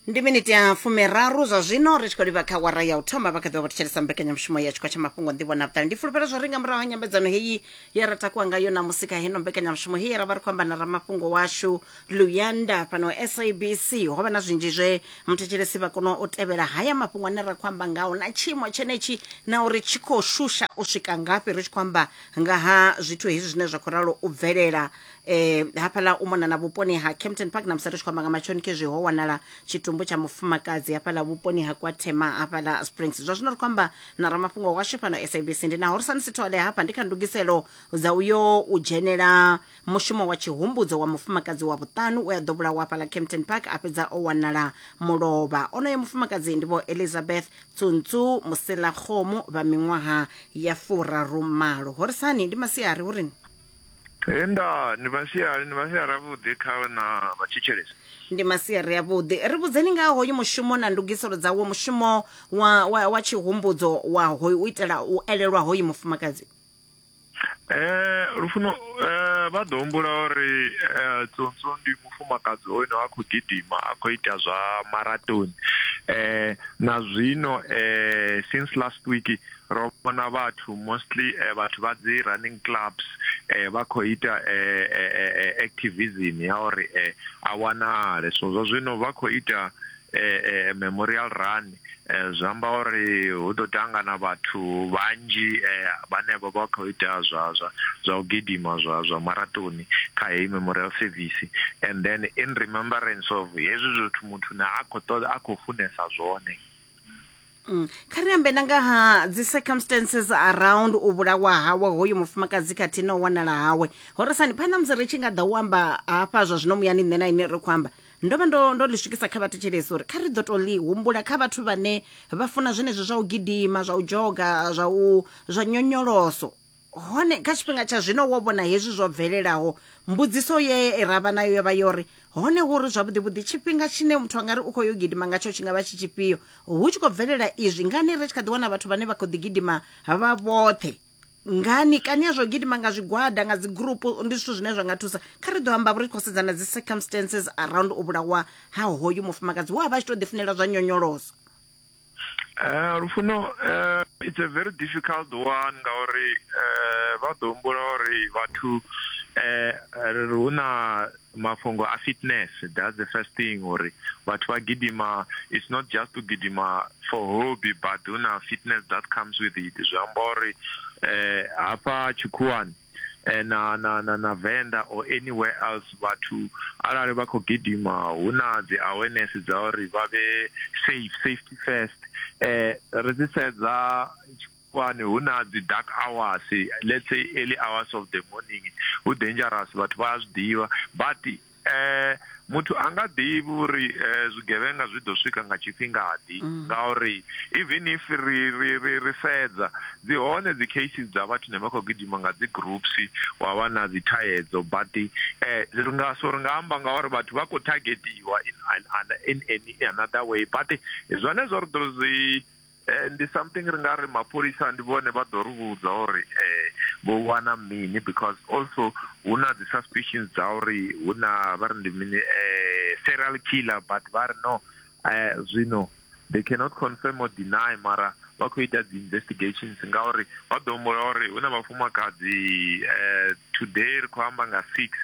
ndi miniti ya fumiraru zwa zwino ri tshi khou livha kha wara ya u thoma vha kha ḓivha vha thetshelesa mbekanyamushumo ya tshikwa tsha mafhungo nḓivho na vhuṱali ndi fulufhela zwo ri nga murahu ha nyambedzano heyi ye ra takuwa ngayo namusi kha heno mbekanyamushumo heyi ra vha ri khou amba na ramafhungo washu luyanda fhano sabc ho vha na zwinzhi zwe muthetshelesi vha kona u tevhela haya mafhungo ane ra khou amba ngawo na tshiimo tshenetshi na uri tshi khou shusha u swika ngafhi ri tshi khou amba nga ha zwithu hezwi zwine zwa khou ralo u bvelela eh hafhaḽa u mona na vhuponi ha Kempton Park na musathu tshi kwamba nga matshoni khezwi ho wanala tshitumbu tsha mufumakadzi hafhaḽa vhuponi ha Kwathema hafhaḽa Springs zwa zwino ri kwamba na ramafhungo washu fhano SABC ndi naho ri sa ni sithole hafha ndi kha ndugiselo dza uyo u dzhenela mushumo wa tshihumbudzo wa mufumakadzi wa vhuṱanu we a ḓo vhulawa hafhaḽa Kempton Park a fhedza o wanala mulovha onoyo mufumakadzi ndi vho Elizabeth Tsuntsu Musela Khomo vha miṅwaha ya furaru malo horisani ndi masiari hurini He nda, ndi masiari, ndi masiari avhuḓi kha vhe na vha thetshelesi. Ndi masiari avhuḓi. Ri vhudzeni nga ha hoyu mushumo na ndugiselo dza wo mushumo wa, wa, wa tshihumbudzo wa hoyu u itela u elelwa hoyu mufumakadzi. Eh, lufuno, eh, vha ḓo humbula uri eh, Tsonso ndi mufumakadzi hoyu no a khou gidima, a khou ita zwa maratoni. Eh, na zwino, eh, since last week, ro vhona vhathu mostly eh, vhathu vha dzi running clubs eh, vha khou ita eh, eh, eh, eh activism ya uri eh, a wanale so zwa zwino vha khou ita eh, eh, memorial run eh, zwi amba uri hu ḓo tangana vhathu vhanzhi eh, vhane vha vha khou ita zwa zwa zwa u gidima zwa zwa maratoni kha heyi memorial service and then in remembrance of hezwi zwithu muthu na a khou ṱoḓa a khou funesa zwone Mm. kha ri ambe na nga ha dzi circumstances around u vhulawa hawe hoyu mufumakadzi khathihi na u wanala hawe horesani phanḓa musi ri tshi nga ḓa u amba hafha zwa zwino muyani nṋe na ine ri khou amba ndo vha ndo ndo ḽi swikisa kha vhathetshelesi uri kha ri ḓo to ḽi humbula kha vhathu vhane vha funa zwenezwi zwa u gidima zwa u dzhoga zwa u zwa nyonyoloso Hone kha tshifhinga tsha zwino wo vhona hezwi zwo bvelelaho mbudziso ye ra vha nayo yo vha yo ri hone hu ri zwavhuḓivhuḓi tshifhinga tshine muthu a nga ri u khou yo gidima ngatsho tshi nga vha tshi tshifhio hu tshi khou bvelela izwi ngani ri tshi kha ḓi wana vhathu vhane vha khou ḓi gidima vha vhoṱhe ngani kani ya zwo gidima nga zwigwada nga dzi group ndi zwithu zwine zwa nga thusa kha ri ḓo amba vho ri khou sedzana dzi circumstances around u vhulawa ha hoyu mufumakadzi wa vha tshi to ḓifunela zwa nyonyoloso Eh, lufuno eh, it's a very difficult one ngauri eh, vha ḓo humbula uri vhathu eh, hu na mafhungo a fitness that's the first thing uri vhathu vha gidima it's not just to gidima for hobby but hu na fitness that comes with it zwi amba uri eh, hafha tshikhuwani eh, na na na na Venda or anywhere else vhathu arali vha khou gidima hu na dzi awareness dza uri vha vhe safe safety first eh ri dzi sedza kwani hu na dzi dark hours let's say early hours of the morning hu dangerous vhathu vha a zwi ḓivha but Eh, muthu a nga ḓivhi uri eh, zwigevhenga zwi ḓo swika nga tshifhingaḓi mm. ngauri even if ri ri ri ri sedza dzi hone dzi cases dza vhathu ne vha khou gidima nga dzi groups wa vha na dzi thayedzo but eh ri nga so ri nga amba nga uri vhathu vha khou targetiwa in in in another way but zwone zwo ri ḓo zwi Eh, ndi something ri nga ri mapholisa ndi vhone vha ḓo ri vhudza uri eh, vho wana mini because also hu na dzi suspicions dza uri hu na vha ri ndi mini eh, serial killer but vha ri no eh, zwino they cannot confirm or deny mara vha khou ita dzi investigations ngauri vha ḓo humbula uri hu na vhafumakadzi eh, today ri khou amba nga six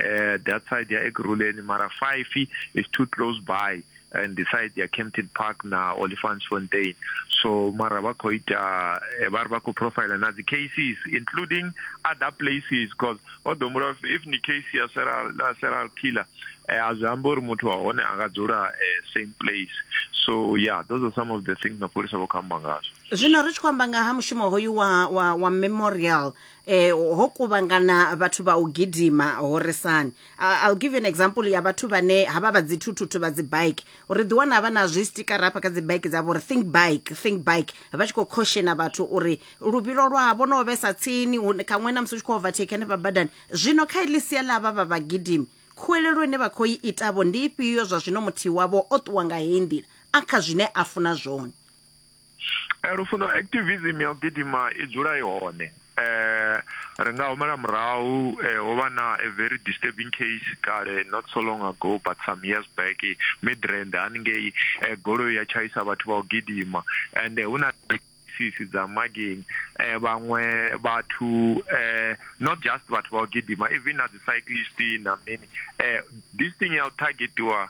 eh, that side ya ekuruleni mara five is too close by and the side ya Kempton Park na Olifantsfontein so mara vha khou ita eh, vha ri vha khou profile na dzi cases including other places because o ḓo mura if ni case ya serial la serial killer eh, a zwi amba uri muthu wa hone a nga dzula eh, same place so yeah those are some of the things mapholisa vho khou amba ngazwo zwino ri tshi khou amba nga ha mushumo hoyu wa, wa, wa memorial eh, ho kuvhangana vhathu vha u gidima horesani Uh, I'll give you an example ya vhathu vhane havha vha dzithuthuthu vha dzibike uri ḓi wana vha na zwi stikara hafha kha dzibike dzavho uri think bike think bike vha tshi khou khoshena vhathu uri luvhilo lwavho no vhesa tsini khaṅwe na musi u tshi khou overtake hanefha badani zwino kha iḽi sia ḽa vha vha vhagidimi khuwelelo ine vha khou i itavho ndi ifhio zwa zwino muthihi wavho o ṱuwa nga heyi nḓila a kha zwine a funa zwone Eh, lufuno activism ya u gidima i dzula i hone eh ri nga humela murahu eh, ho vha na a very disturbing case kale not so long ago but some years back eh, midrand haningei eh, goloi ya tshaisa vhathu vha u gidima and eh, hu na sisi dza mageni eh vhaṅwe vhathu eh not just vhathu vha u gidima even na dzi cyclist na mini eh this thing ya u targetiwa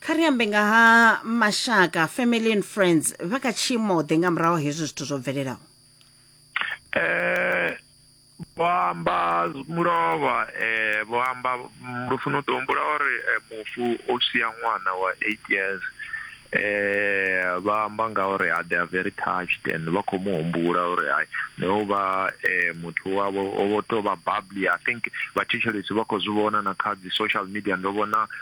kha ri ambe nga ha mashaka family and friends vha kha tshiimo ḓe nga murahu hezwi zwithu zwo bvelelaho eh vho amba mulovha eh vho amba lufuna u ḓo humbula uri eh, mufu o sia ṅwana wa eight years eh vha amba nga uri ah, they are very touched and vha khou mu humbula uri ai no vha eh muthu wavho o vho to vha bubbly i think vhathetshelesi vha khou zwi vhona na kha dzi social media ndo vhona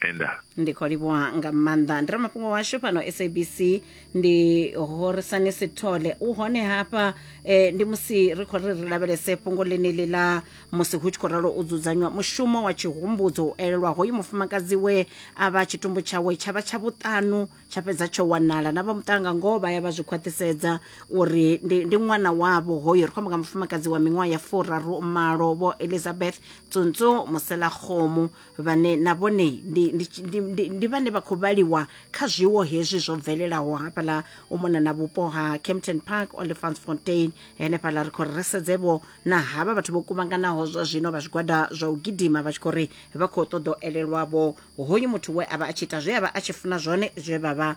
enda ndi khou livhuwa nga maanḓa ndi ramafhungo washu fhano sabc ndi horisani sithole u hone hafha eh, ndi musi ri khou ri ri lavhelese fhungo ḽeneḽi ḽa musi hu tshi khou ralo u dzudzanywa mushumo wa tshihumbudzo u elelwa hoyu mufumakadzi we a vha tshitumbu tshawe tsha vha tsha vhuṱanu tsha fhedza tsho wanala na vha muṱanga ngoho vha ya vha zwi khwaṱhisedza uri ndi, ndi ṅwana wavho hoyo ri khou amba nga mufumakadzi wa miṅwaha ya furaru malo vho elizabeth tsuntsu muselakgomo vhane na vhone ndi, ndi, ndi, ndi, ndi vhane vha khou vhaliwa kha zwiwo hezwi zwo bvelelaho hafhaḽa u mona na vhupo ha campton park olifantsfontein henefhaḽa ri khou ri sedzevho na havha vhathu vho kuvhanganaho zwa zwino vha zwigwada zwa u gidima vha tshi khou ri vha khou ṱoḓa u elelwavho hoyu muthu we a vha a tshi ita zwe a vha a tshi funa zwone zwe vha vha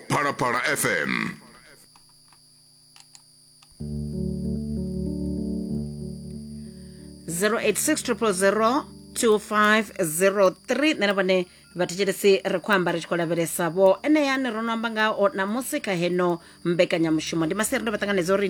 phalaphala fm zero eight six triple zero two five zero three nṋe na vhone vhathetshelesi ri khou amba ri tshi khou lavhelesa vho enea ni ro no amba ngao namusi kha heno mbekanyamushumo ndi maseri ndo vha ṱanganedza uri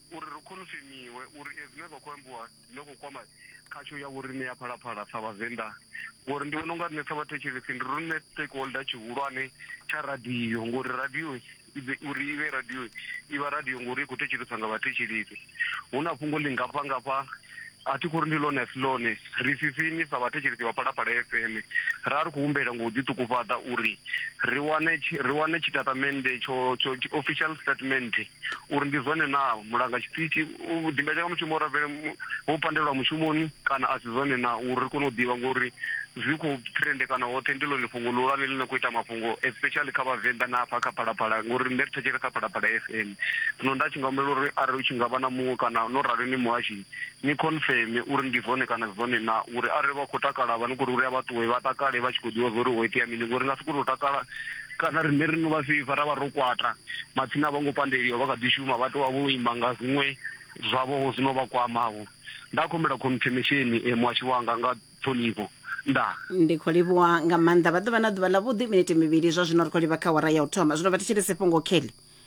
uri ri khonfemiwe uri e zwine zwa khou ambiwa zwi khou kwama khatsho ya vhoriṋe ya phalaphala sa vhavenḓa ngori ndi vhona unga riṋe sa vhathetshelesi ndi riṋe stakeholder tshihulwane tsha radio ngori radio uri i vhe radio i vha radio ngori i khou thetsheleswa nga vhathetshelesi hu na fhungo ḽi ngafha ngafha a thi khou ri ndi lone si lone ri sisini sa vhathetshelesi vha phalaphala fm ra ri khou humbela ngo u ḓiṱukufhaḓa uri ri wane ri wane tshitatamennde tsho tsho official statement uri ndi zwone naa mulanga tshiṱitshi u ḓimbetshela nga mushumo uri a bvele vho pandelwa mushumoni kana a si zwone naa uri ri kone u ḓivha ngori zwi khou trendekana hoṱhe ndi ḽone fhungo ḽihulwane ḽi no khou ita mafhungo especially kha vhavenḓa na hafha kha phalaphala ngori nṋe ri thetshere kha phalaphala f m zwino nda tshi nga humbela uri arali u tshi nga vha na muṅwe kana no rali ni muhashi ni khonfeme uri ndi zwone kana a si zwone naa, uri arali vha khou takala vha ni khou ri uri a vha ṱuwe vha takale vha tshi khou ḓivha zwa uri ho itea mini ngori ri nga si kone u takala kana riṋe ri no vha fhifha ra vha ro kwata, matsina a vho ngo pandeliwa vha kha ḓi shuma vha tou vha vho ima nga zwiṅwe zwavho-vho zwi no vha kwama-vho. Nda khombela khonfemesheni e, muhasho wanga, nga ṱhonifho. Ndaa. Ndi khou livhuwa nga maanḓa. Vha ḓo vha na ḓuvha ḽavhuḓi, minete mivhili zwa zwino ri khou livha kha awara ya u thoma. Zwino vha thetshelese fhungo, Kelly.